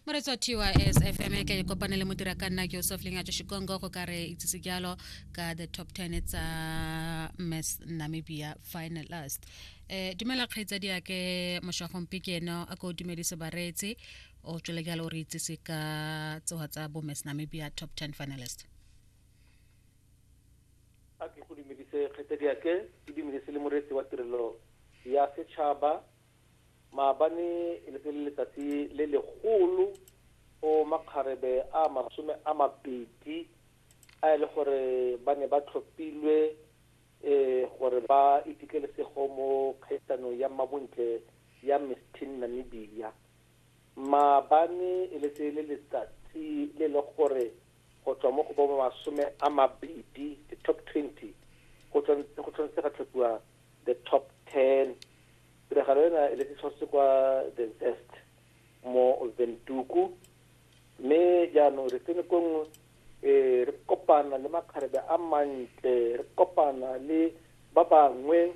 moretso tys fm e ke kopane le modira ka nna joseph lengajo shikongo go ka re itsise jalo ka the top 10 tsa miss namibia finalist eh dumela kgaitsa di ake moshagong pikeno a ko dumedise bareetsi o tswele jalo re itsise ka tsoga tsa bo miss namibia top 10 finalist a ke go dumedise kgaitsa di ake ke dumedise le moreetsi wa tirelo ya setšhaba Maabane e ne e le letsatsi le legolo go makgarebe a masome a mabedi a e le gore ba ne ba tlhophilwe gore ba iphitlhele sego mo kgaisanong ya mmabontle ya Miss Teen Namibia. Maabane e le tse le letsatsi le le gore go tswa mo go bo masome a mabedi, the top twenty, go tshwanetse ga tlhophiwa the top ten tiragalo ena e le se tshwaretse kwa the zest mo ventuku mme jaanong re tsene ko nngwe um re kopana le makgarebe a mantle re kopana le ba bangwe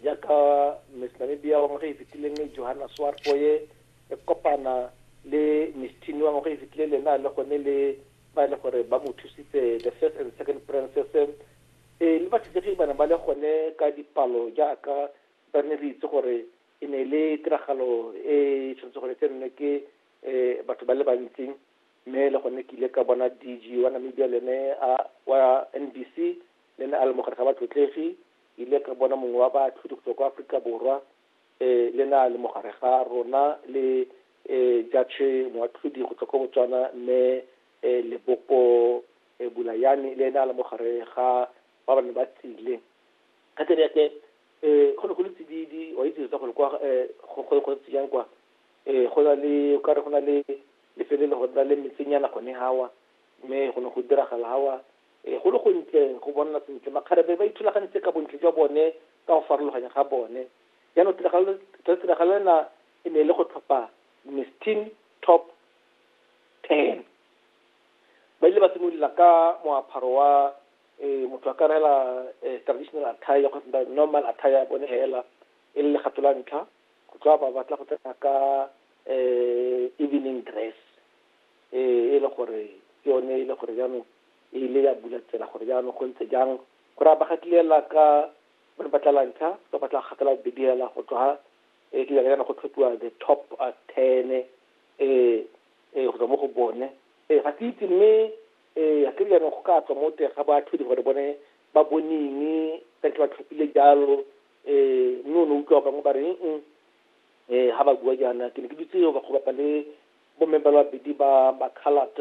jaaka miss namibia wa ngwaga e fetileng johanna swarfoye re kopana le miss tini wa ngwaga e fetileng le na le gone le ba e le gore ba mo thusitse, the first and second princes, e, mme bathusegi ba ne ba le gone ka dipalo jaaka ba ne re itse gore e ne e le tiragalo e tshwanetse gore e tsenwe ke um batho ba le bantsi mme le gone ke ile ka bona dg wa namibia le ene wa nbc le ne a le mogare ga batlotlegi ile ka bona mongwe wa baatlhodi go tswa kwa aforika borwa le ne a le mogare ga rona, le Judge Moatlhodi go tswa ko Botswana, Mme Leboko Bulayane, le ene a le mogare ga ba ba ne ba tsile. Ka tsela yake go ne go le tsididi, wa itse tota gore kwa go ntse jang kwa, go na le, o kare go na le lefelo le go na le metsenyana gone hawa, mme go ne go diragala hawa Ee, go le go ntle go bonna sentle. Makgarebe ba ithulagantse ka bontle jwa bone ka go farologanya ga bone. Jaanong tiragalo le tiragalo ena e ne e le go tlhopha Miss Teen Top Ten. Ba ile ba simolola ka moapharo wa eh, motho a ka rela eh, traditional attire kgotsa normal attire ya bone hela e le legato la ntlha go tswa ba batla go tsena ka eh, evening dress e e le gore ke yone e le gore jaanong e ile ya bula tsela gore jaanong go ntse jang go raya ba gatilela ka ba ba tla lantsha ba ba tla gatela bediela go tswa e ke jaana go tlhophiwa the top ten e e go tswa mo go bone e ga ke itse mme e ga ke jaanong go ka tswa mo teng ga batho di gore bone ba boneng ka ntle ba tlhophile jalo e mme o ne utlwa bangwe ba reng e ga ba bua jaana ke ne ke dutse ba go bapa le Bomme ba le babedi ba ba-coloured,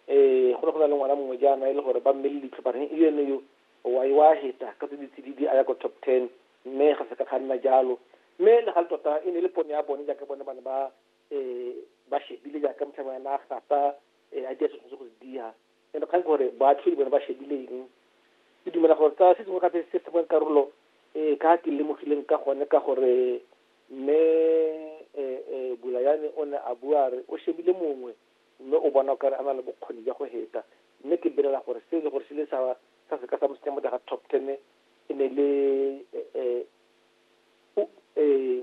um go ne go na le ngwana mongwe jaana e le gore ba mmele leitlho ba reng, Eo ene yo, o a e wa heta ka tse di tsididi a ya ko top ten. Mme ga se ka ga nna jalo. Mme le gale tota e ne e le pono ya bone jaaka bone ba ne ba um ba shebile jaaka motlhami wa ena a gata, um a dia se tshwanetseng go se dia. E re kgang ke gore boatlhodi bone ba shebile eng. Ke dumela gore ka se sengwe gape se sengwe karolo e ka ke lemogileng ka gone ka gore Mme Bulayane o ne a bua a re o shebile mongwe mme o bona o kare a na le bokgoni jwa go heta mme ke belela gore se e le gore se ile sa sa seka sa mo tsenya mo teng ga top ten e ne le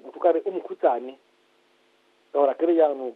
motho ka re o mokhutsane ka gore a kere jaanong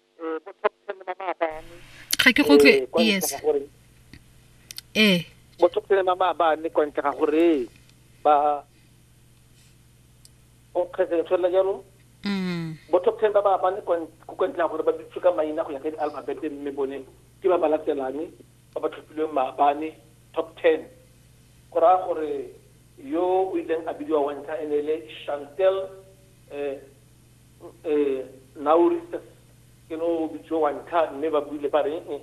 eh, bo top ten le mamaabane ga ke go tle eh, yes ee bo top ten le mamaabane kwa ntle ga gore ba o kgetse le tshwanela jalo mm. bo top ten ba maabane kwa ntle ga gore ba dutse ka maina go ya ka di-alphabete mme bone ke ba ba latelane ba ba tlhophilweng maabane top ten go raya gore yo o ileng a bidiwa wa ntlha e ne e le chantel E, e, Naurista ke no bitso wa ntlha mme ba buile ba re e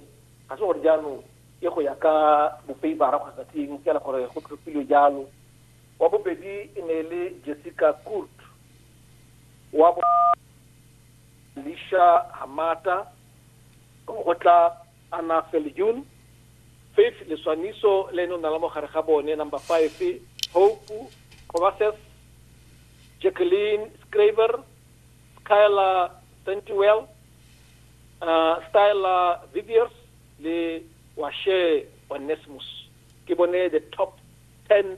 ga se gore jaanong ke go ya ka bofeibara kgotsa ke eng fela gore go tlhophilwe jalo wa bobedi e ne e le Jessica Kurt wa bo Lisha Hamata go tla Anna Viljoen, Faith Leswaniso le ene o nala mo gare ga bone, number five, Hope Kovases, Jacqueline Scraver, Skyla Sentiwell, uh, Styla Viviers le Washe Onesmus ke bone the top 10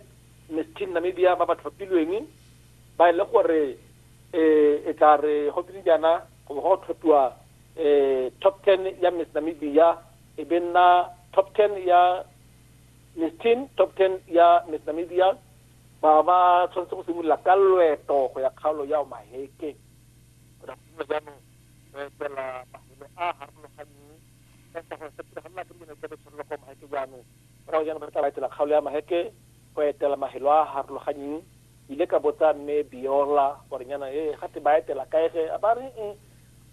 Miss Teen Namibia ba ba tlhophilweng ba e le gore eh, e tla re go tse dijana go bo go tlhophiwa Top ten ya Miss Namibia e be nna top ten ya Miss Teen, top ten ya Miss Namibia ba ba tshwanetse go simolola ka loeto go ya kgaolo ya Omaheke jaanong re etela mafelo a harologaneng ka sa gore se tiragala ke dilo tse re tshwanela kwa Omaheke jaanong go jaanong re tla ba etela kgaolo ya Omaheke go etela mafelo a harologaneng ile ka botsa mme Biola gore nyana e ga te ba etela kaege a ba re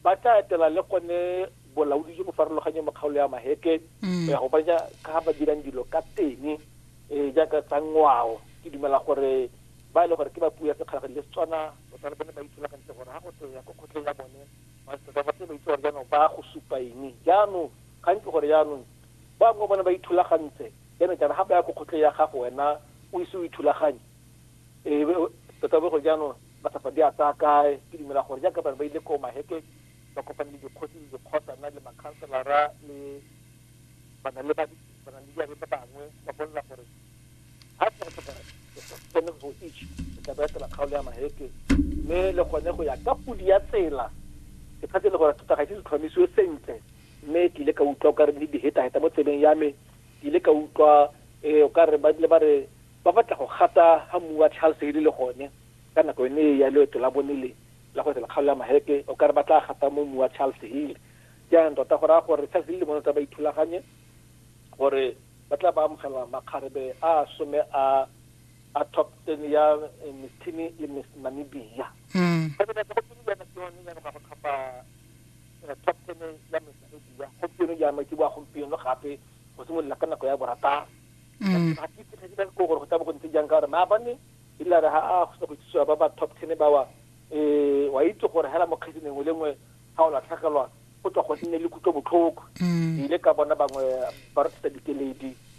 ba tla etela le gone bolaodi jo bo farologanye mo kgaolo ya mahetle mm. go ya go bona ka ba dirang dilo ka teng um eh, jaaka tsa ngwao ke dumela gore ba e le gore ke ba puo ya sekgalaga le setswana o tsa le bone ba itsholagantle gore ga go tle ya ko kgotleng ya bone ba ba itse gore jaanong ba go supa eng jaanong gantsi gore jaanong ba bangwe bone ba ithulagantse jaanong jaana ga ba ya ko kgotleng ya gago wena o ise o ithulaganye ee tota bo gore jaanong Matsapa di a tsaya kae? Ke dumela gore jaaka bane ba ile ko Maheke ba kopane le dikgosi le dikgotsana le makhanselara le bana le ba bana le diabe ba bangwe ba bolela gore ha tsa go tlhoka tsene go itse o tla ba etela kgaolo ya Maheke mme le gone go ya ka pudi ya tsela ke tshatse le gore tota ga se tlhomisiwe sentle mme ke ile ka utlwa o ka re le diheta heta mo tseleng ya me ke ile ka utlwa eh o ka re ba le ba re Ba batla go gata ga mmu wa Charles Haley le gone ka nako yone e ya loeto la bone le la go etela kgaolo ya Maheke, o ka re ba tla gata mo mmu wa Charles Haley. Jaanong tota go raya gore Charles Haley le bone o tla ba ithulaganye gore ba tla ba amogela makgarebe a a some a a top ten ya Miss Tini le Miss Namibia. Gompieno jaanong ke boa gompieno gape go simolola ka nako ya borataro. Mm. ga ke fitlha dira ko gore go tla bo go ntse jang ka gore maabane e la re ga a go go itsisiwa ba ba top ten ba wa um wa itse gore hela mokgedi nengwe le nngwe ga o latlhegelwa go tswa go nne le kutlo botlhoko mm. ke ile ka bona bangwe ba re tsa dikeledi